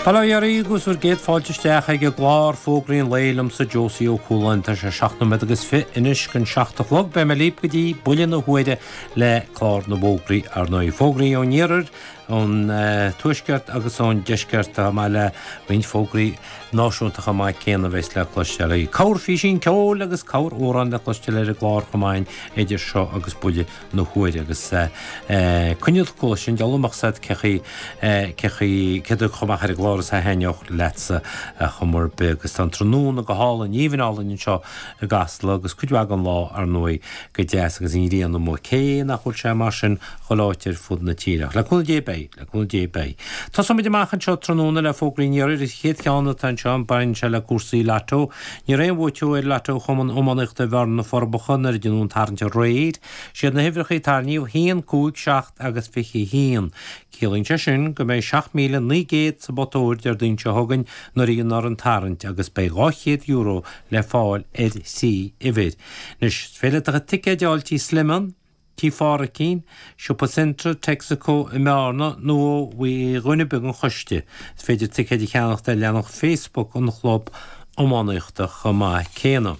Bail ó Dhia oraibh agus bhur gcéad fáilte isteach ag an gclár Fógraí an Lae liomsa Josie Ó Cualáin Tá sé seacht nóiméad agus fiche anois dhon seacht a chlog Beidh mé libh go dtí buille na huaire le clár na bhfógraí ar ndóigh Fógraí ón iarthar, ón tuaisceart agus ón deisceart amach le roinnt fógraí náisiúnta chomh maith céanna a bheas le cloisteáil uaidh Corrphíosa ceoil agus corramhrán le cloisteáil ar an gclár chomh maith idir seo agus buille na huaire agus coinneal cúl sin de amach seacht seacht seacht a dó chomh maith ar an gclár is a thaitneodh leatsa ar chuma ar bith agus tá an tráthnóna go hálainn aoibhinn álainn anseo i gCasla agus cuid mhaith den lá ar ndóigh go deas agus an ghrian amuigh cé nach bhfuil sé mar sin chuile áit ar fud na tíre ach le cúnamh Dé beidh le cúnamh Dé beidh tosóimid amach anseo tráthnóna le fógraí an iarthair an chéad cheann atá anseo baineann sé le cúrsaí Lotto Ní raibh aon bhuaiteoir ar Lotto Chumann Iománaíochta Bhearna na Forbacha nuair a déanadh an tarraingt aréir. Siad na huimhreachaí a tarraingíodh haon, cúig, seacht agus fiche haon. Ciallaíonn sé sin go mbeidh seacht míle naoi gcéad sa bpota óir Déardaoin seo chugainn nuair a dhéanfar an tarraingt agus beidh dhá chéad euro le fáil ar thrí uimhir. Anois is féidir ticéid a fháil Tigh Sliman. Tigh Phádraicín, Siopa Centra, Texaco, i mBearna, nó ó dhuine ar bith den choiste. Is féidir ticéid a cheannacht ar leathanach Facebook an chlub iománaíochta chomh maith céanna.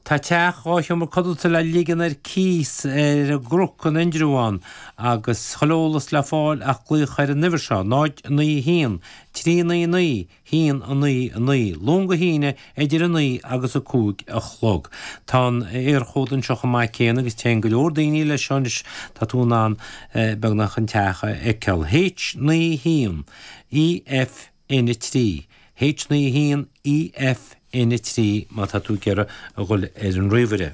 Tá teach dhá sheomra codlata le ligean ar cíos ar an gCnoc in Indreabhán agus chuile eolas le fáil ach glaoch ar an uimhir seo, 0901 399 hAon, a Naoi, a Naoi, Luan go hAoine idir a naoi agus a cúig a chlog. Tá an tÉirchód anseo chomh maith céanna agus téann go leor daoine leis seo anois, tá tú in ann beagnach an teach a fheiceáil. H naoi a hAon, E F N a trí, H naoi a hAon, E F N a trí má tá tú ag iarraidh a dhul ar an ríomhaire.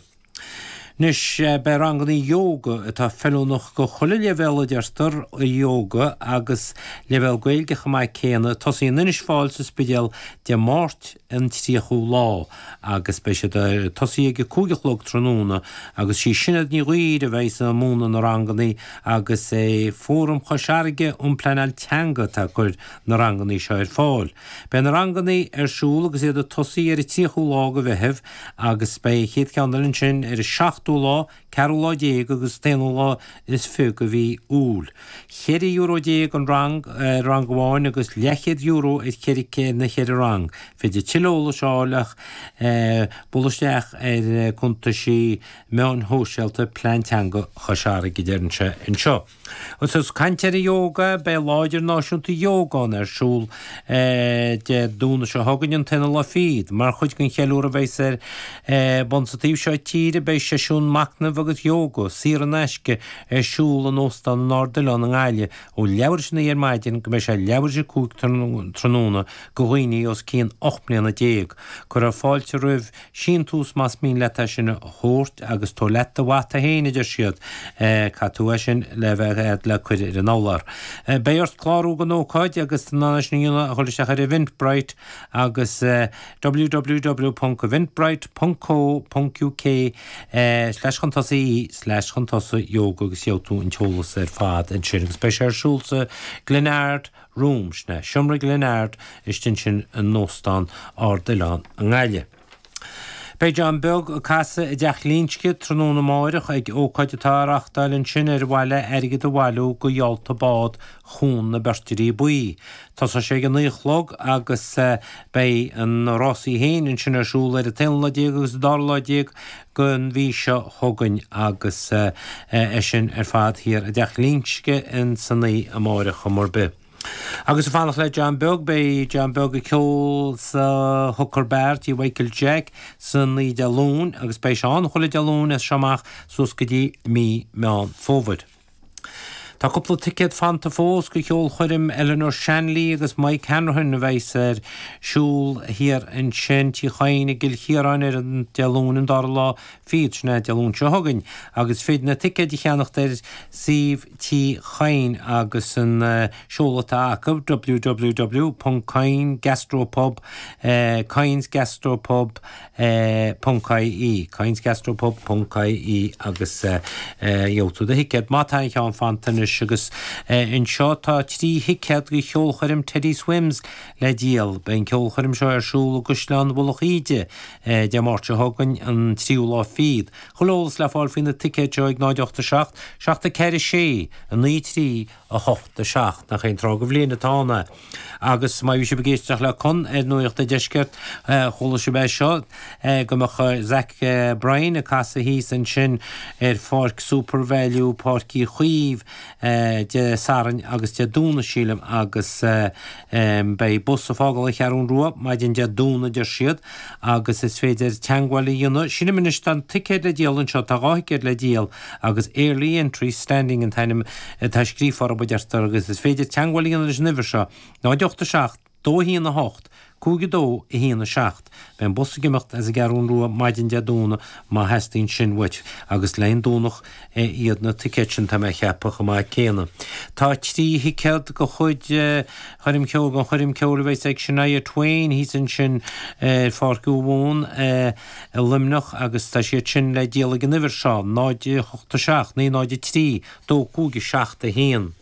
Anois, beidh rangannaí Yoga, atá feiliúnach do chuile leibhéal a deirtear, Yoga agus leibhéal Gaeilge chomh maith céanna, ag tosaí in Inis Fáil sa Spidéal Dé Máirt an 30ú lá agus beidh siad ag tosaí ag a cúig a chlog tráthnóna agus sí Sinéad Ní Dhuibhir a bheas ag múineadh na rangannaí agus is é Fóram Chois Fharraige um Pleanáil Teanga atá ag cur na rangannaí seo ar fáil. Beidh na rangannaí ar siúl agus iad ag tosaí ar an 30ú lá de Mheitheamh agus beidh an chéad cheann eile ansin ar an seachtú lá, ceathrú lá déag agus an t-aonú lá is fiche de mhí Iúil. Cheithre euro déag an rang ar rang amháin agus leathchéad euro ar cheithre na ceithre rang. Féidir tuilleadh eolais a fháil ach bualadh isteach ar chuntaisí meáin shóisialta Plean Teanga Chois Fharraige, a deireann sé anseo. Ós ag caint ar ióga, beidh Lá Idirnáisiúnta Ióga ar siúl Dé Domhnaigh seo chugainn, an t-aonú lá fichead. Mar chuid gon cheiliúradh a bheas ar bun sa taobh seo tíre, beidh seisiún macnaimh agus ióga, saor in aisce, ar siúl in Óstán an Ardoileán i nGaillimh ó leathuair théis a 9 ar maidin go mbeidh sé leathuair théis a 5 tráthnóna, go dhaoine os cionn 18 mbliana. Cuirfear fáilte roimh. síntiús más mian leat é sin a thabhairt agus tabhair leat do mhata féin, a deir siad. Teastaíonn sé sin le haghaidh le cur ar an urlár. Beidh ort clárú don ócáid agus tá an fhaisnéis ann ach a ghoil isteach ar Eventbrite agus www.eventbrite.co.uk/chun-tosaigh/chun-tosaigh-yoga agus gheobhaidh tú an t-eolas ar fad ansin agus beidh sé ar siúl sa Glenard, room, sna seomraí Glen Ard istigh ansin in Óstán Ard Oileán i nGaillimh. Beidh John Beag ag casadh i dTeach Ghlinsce tráthnóna amáireach ag ócáid atá á reáchtáil ansin ar mhaithe le airgead a bhailiú go Gheallta Bád Chuan na Beirtrí Buí. Tosóidh sé ag a naoi a chlog agus beidh na rásaí féin ansin ar siúl ar an t-aonú lá déag agus an dara lá déag gon mhí seo chugainn agus é sin ar fad thiar i dTeach Ghlinsce insan oíche amárach ar chuma ar bith. Agus ag fanacht le John Beag, beidh John Beag ag ceol sa Hooker Bar tí Mhichael Jack san oíche Dé Luain agus beidh sé ann chuile Dé Luain as seo amach suas go dtí mí Mheán Fómhair. Tá cúpla ticéad fanta fós go cheolchoirm Eleanor Shanley agus Mike Hanrahan a bheas ar siúl thiar ansin Tí Chadhain i gCill Chiaráin ar an, Dé Luain an dara lá fichead, sin é Dé Luain seo chugainn, agus is féidir na ticéid a cheannacht ar shuíomh Tí Chadhain agus an seoladh atá acu www.coynesgastropub, Coyne's Gastropub. .ie, coynesgastropub.ie agus gheobhaidh tú do thicéad, má tá aon cheann fanta anois, agus anseo tá trí thicéad go cheolchoirm Teddy Swims le díol. Beidh an cheolchoirm seo ar siúl i gCaisleán Mhullach Íde Dé Máirt seo chugainn, an 3ú lá fichead, tuilleadh eolas le fáil faoi na ticéid seo ag 0 8 7 7 4 6 9 3 8, 7, nach hé an tráth go bhliain atá ann é. Agus má bhí sibh ag éisteacht le Con ar Nuacht an Deiscirt, chuala sibh é seo, go mbeadh Zach Bryan ag casadh thíos ansin ar pháirc Supervalu, Páirc Uí Chaoimh, Dé Sathairn agus Dé Domhnaigh, sílim, agus. Beidh bus ag fágáil an Cheathrú Rua maidin Dé Domhnaigh a deir siad agus is féidir teagmháil a dhéanamh. Sin é anois tá ticéid le díol anseo, tá dhá thicéad le díol agus Early Entry Standing an t-ainm atá scríofa orthu a deirtear agus is féidir teagmháil a dhéanamh leis an uimhir seo, 08 7 21 8, 5 2 1 7. imeacht. Beidh an bus ag imeacht as an gCeathrú Rua maidin Dé Domhnaigh má theastaíonn sin uait, agus le haghaidh an Domhnach iad na ticéid sin, tá mé a cheapadh, chomh maith céanna. Tá trí thicéad de chuid coirm cheoil, don choirm cheoil a bheas ag Shania Twain, thíos ansin ar Pháirc Thuamhumhan i Luimneach, agus tá siad sin le díol ag an uimhir seo, 087 903 2571.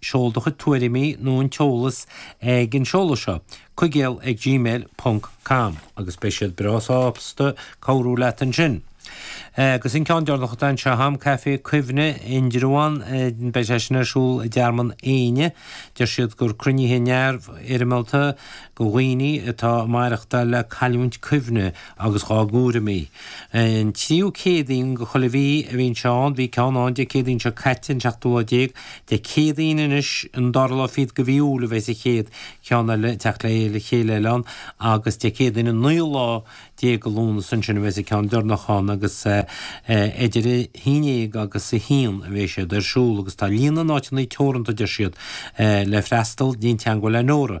Seol do chuid tuairimí nó an t-eolas ag an seoladh seo, cuigéal ag gmail ponc com, agus beidh siad breá sásta cabhrú leat ansin. Agus an ceann deireanach atá anseo a'm, Caifé Cuimhne, Indreabhán, beidh sé sin ar siúl i dTearmann Éanna. Deir siad gur cruinnithe neamhfhoirmeálta do dhaoine atá ag maireachtáil le cailliúint cuimhne agus dhá gcúraimí. An tríú Céadaoin de chuile mhí a bhíonn sé ann, bhí ceann ann Dé Céadaoin seo caite, an seachtú lá déag. Dé Céadaoin anois, an dara lá fichead de mhí Iúil a bheas an chéad cheann eile ag teacht le chéile eile ann agus Dé Céadaoin an naoú lá déag de Lúnasa ansin a bheas an ceann deireanach ann agus idir a haon déag agus a haon a bheas siad ar siúl agus tá líon na n-áiteanna teoranta, deir siad, le freastal, déan teagmháil le Nóra.